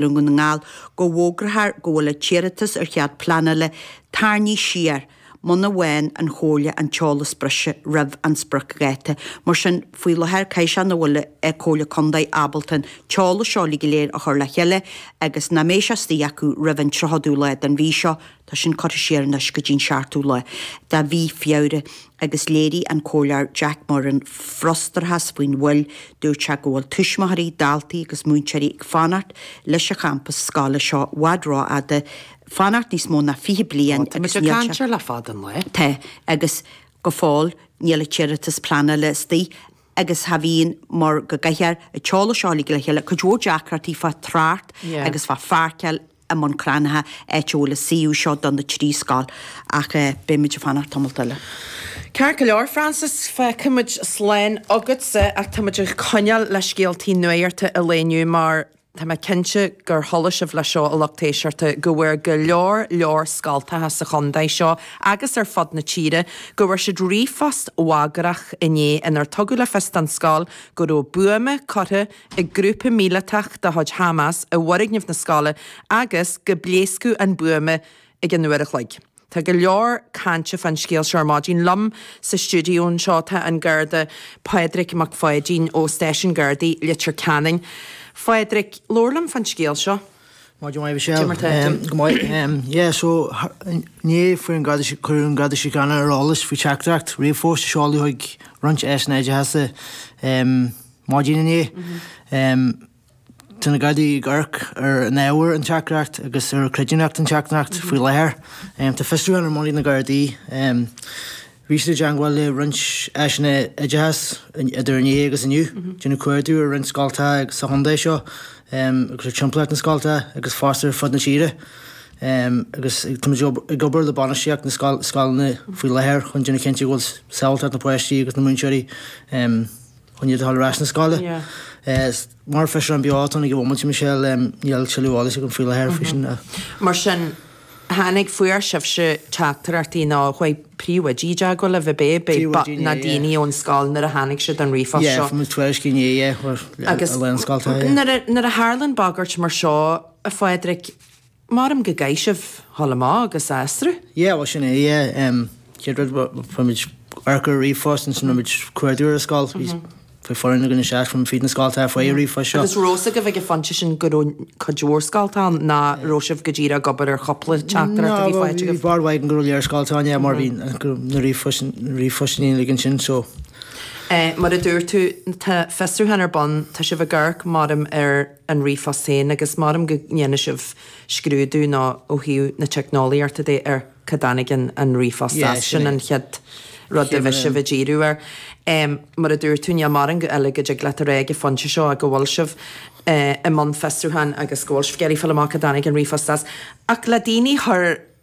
Dhún na nGall go bhfógrathar go bhfuil an t-iarratas ar chead pleanála tarraingthe siar muna bhfághann an Chomhairle an t-eolas breise roimh an spriocdháta. Mar sin, faoi láthair, cé acu an bhfuil an Chomhairle Condae ábalta an t-eolas seo uilig go léir a chur le cheile agus ná mbeidh sé istigh acu roimh an tríochadú lá den mhí seo, tá sin curtha siar anois go dtí an seachtú lá de mhí Feabhra. agus léirigh an comhairleoir Jack Murray frustrachas faoin mhoill, dúirt sé go bhfuil tuismitheoirí, daltaí agus múinteoirí ag fanacht leis an champas scoile seo i bhfad rófhada, fanacht níos mó ná 20 bliain agus níl sé. Tá, agus go fóill níl an t-iarratas pleanála istigh agus cha bhíonn mar go gcaithfear an t-eolas seo uilig a chur le chéile, cuid mhór deacrachtaí fá thrácht agus fá pháirceáil, i mBun Cranncha, áit a bhfuil an suíomh seo do na trí scoil, ach beidh muid ag fanacht tamalt eile. Ceart go leor, Francis, fágfaimid slán agatsa ach tá muid ag coinneáil le scéaltaí nuachta i léar inniu mar tá mé cinnte gur chuala sibh uilig seo a lucht éisteachta go bhfuair go leor leor scoltacha sa chontae seo agus ar fud na tíre go bhfuair siad ríomhphost bagrach inné inar tugadh le fios don scoil go raibh buama curtha ag grúpa míleatach de chuid Hamas i bhfoirgneamh na scoile agus go bpléascfadh an buama ag an uair a chloig. Tá go leor cainte fán scéal seo ar maidin. Liom sa stiúideo anseo tá an Garda Pádraig Mac Pháidín ó Stáisiún Gardaí Leitir Ceanainn. Phádraig, labhair liom fán scéal seo. Maidin mhaith Mhichelle. Cad é mar atá tú? Go maith. Yeah, so inné fuair an Garda cuireadh an Garda Síochána ar an eolas faoi teachtaireacht ríomhphost a seoladh chuig roinnt áiseanna oideachais Maidin inné, tá na Gardaí ag amharc ar an ábhar, an teachtaireacht agus ar chreidiúnacht an teachtaireacht faoi láthair. Tá fiosrúchán ar bun ag na Gardaí. Bhí siad i dteagmháil le roinnt áiseanna oideachais idir inné agus inniu. Déanadh cuardú ar roinnt scoltacha sa chontae seo agus ar timpeallacht na scoltacha agus fosta ar fud na tíre. Agus táimid ag obair le bainistíocht na scoileanna faoi láthair chun déanamh cinnte go bhfuil sábháilteacht na bpáistí agus na múinteoirí Chun iad a thabhairt ar ais na scoile. Mar fiosrúchán beo atá ann go bhfuil muid Michelle níl tuilleadh eolais agam faoi láthair faoi sin. Mar sin tháinig fuair sibhse teachtaireachtaí nó chuaigh príomhoidí i dteagmháil libh b'fhéidir nó daoine ón scoil nuair a tháinig siad ar an ríomhphost seo. Yeah fuair muid tuairisc inné yeah agus nuair a tharla bagairt mar seo a Phádraic Maram go gcaithfidh sibh dhul amach agus aistriú. Yeah, bhuel sin é, yeah, em, chéad rud, fuair muid amharc ar an ríomhphost, ansin rinne muid cuardú ar an scoil, bhí, bhí foireann againn isteach fríd na scoltacha a fuair an ríomhphost seo. Agus an raibh a fhios agaibh ag an phointe sin go raibh cuid mhór scoltacha ann nó raibh sibh go díreach ag obair ar chúpla teachtaireacht a bhí faighte agaibh? Bhí barúil mhaith go raibh léar scoltacha ann, yeah, mar bhí na ríomhphost, ríomhphost uilig ansin, so. Eh, mar a dúirt tú, tá fiosrúchán ar bun, tá sibh ag amharc, maram, ar. an ríomhphost féin agus maram go ndéanfaidh sibh scrúdú nó ó thaobh na teicneolaíochta de ar cá dtáinig an ríomhphost as. Sin an chéad rud a bheidh sibh ag díriú air. Mar a dúirt tú níl mórán eile go dtig leat a rá ag an phointe seo go bhfuil sibh i mbun fiosrúcháin agus go bhfuil sibh ag iarraidh fáil amach cá dtáinig an ríomhphost as. Ach le daoine thar.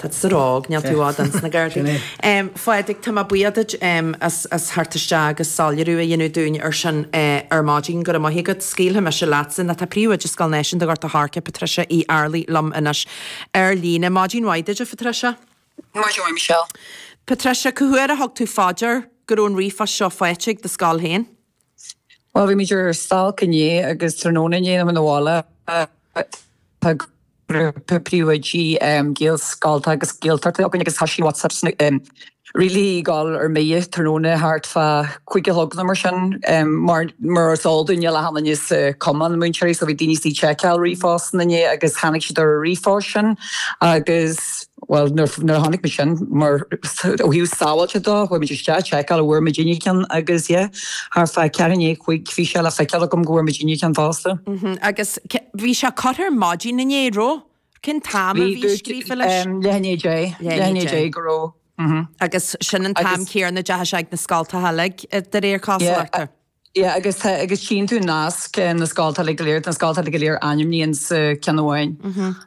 Tá tusa ag rá, níl tú á dtinn sna Gardaí. A Phádraig, tá mé buíoch duit as theacht isteach agus soiléiriú a dhéanamh dúinn ar sin ar maidin. Go raibh maith agat. Scaoilfidh mise leatsa. Tá príomhoide Scoil Náisiúnta Ghort an Choirce, Patricia Uí Arlaigh liom anois ar líne. Maidin mhaith duit, a Phatricia. Maidin mhaith, Michelle. Patricia, cá huair a thug tú fá dear go raibh an ríomhphost seo faighte ag do scoil féin? Bhuel, bhí muid ar stailc inné agus tráthnóna inné 'na bhaile. Tá grúpa príomhoidí Gaelscolta agus Gaeltachta againn agus thoisigh an WhatsApp really ag gabháil ar mire tráthnóna thart fá cúig a chlog nó mar sin mar, mar is eol dúinn, níl achan duine sa Chumann na Múinteoirí so bhí daoine istigh ag seiceáil ríomhphostanna inné agus tháinig siad ar an ríomhphost sin agus. Bhuel nuair nuair a chonaic muid sin mar ó thaobh sábháilteacht de, chuaigh muid isteach a sheiceáil an bhfuair muid aon cheann agus yeah, thart fá ceathrú i ndiaidh a cúig bhí sé le feiceáil agam go bhfuair muid aon cheann fosta. Mm-hm, agus ce, bhí sé curtha ar maidin inné, an raibh? Cén t-am a bhí scríofa leis? em leath i ndiaidh a deich, leath i ndiaidh a deich. Leath i ndiaidh a deich, go raibh, mm-hm. Agus sin an t-am céanna a dteachaidh sé ag na scoltacha uilig eh, de réir cosúlachta? Yeah, yeah agus tá, agus tchíonn tú an nasc eh, na scolta uilig go léir, tá na scolta uilig go léir ainmnithe sa ceann amháin. Mm-hm.